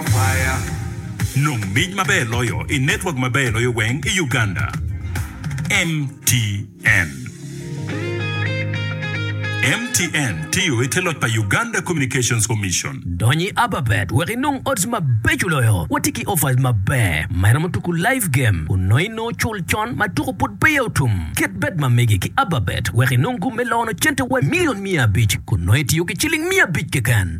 Kwaya, Nong mic maber loyo i network maber loyo weng i Uganda, MTN. MTN tiyo i te loc pa Uganda Communications Commission. Dony i Ababet wek inong odds mabeco loyo. Watye ki offers maber ma iromo tuku live game kun nongo inongo cul con ma tuku pud peya otum. Ket bet ma mege ki Ababet wek inong gum me lono cente wa milion miya abic kun nongo itiyo ki ciling miya abic keken.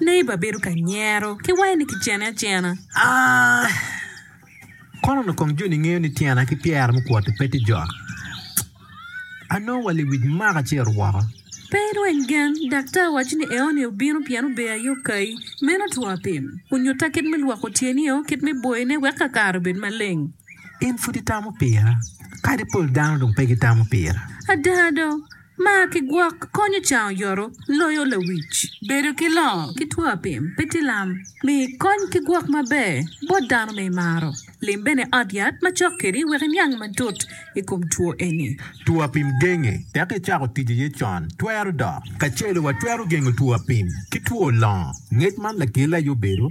Neighbor bedo ka nyero ki wange ni kicene acena. Aah! Kono onongo kong joni ngeyo ni tyena ki pyera mukwoti pe tye jok. Anongo wa liwic maka ci eru woko. Pe irweny gen, daktar waco ni eoni obino pien ober aye okayi. Meno two apim. Onyutta kit me lwoko tyenio, kit me boyone wek ka kare obed maleng. In pud itamo pira? Kadi pol dano dong pe gitamo pira. Ada do. Mar ki gwok konyo cango yoto loyo lawic. Bedo ki longo ki two apim pe tye lam. Mi kony ki gwok maber bot dano ma imaro. Lim bene ot yat ma cok kedi wek iniang matut i kom two eni. Two apim genge tek icako tic iye con twero dok. Kacelu watwero gengo two apim ki two longo, ngec man lakele aye obedo.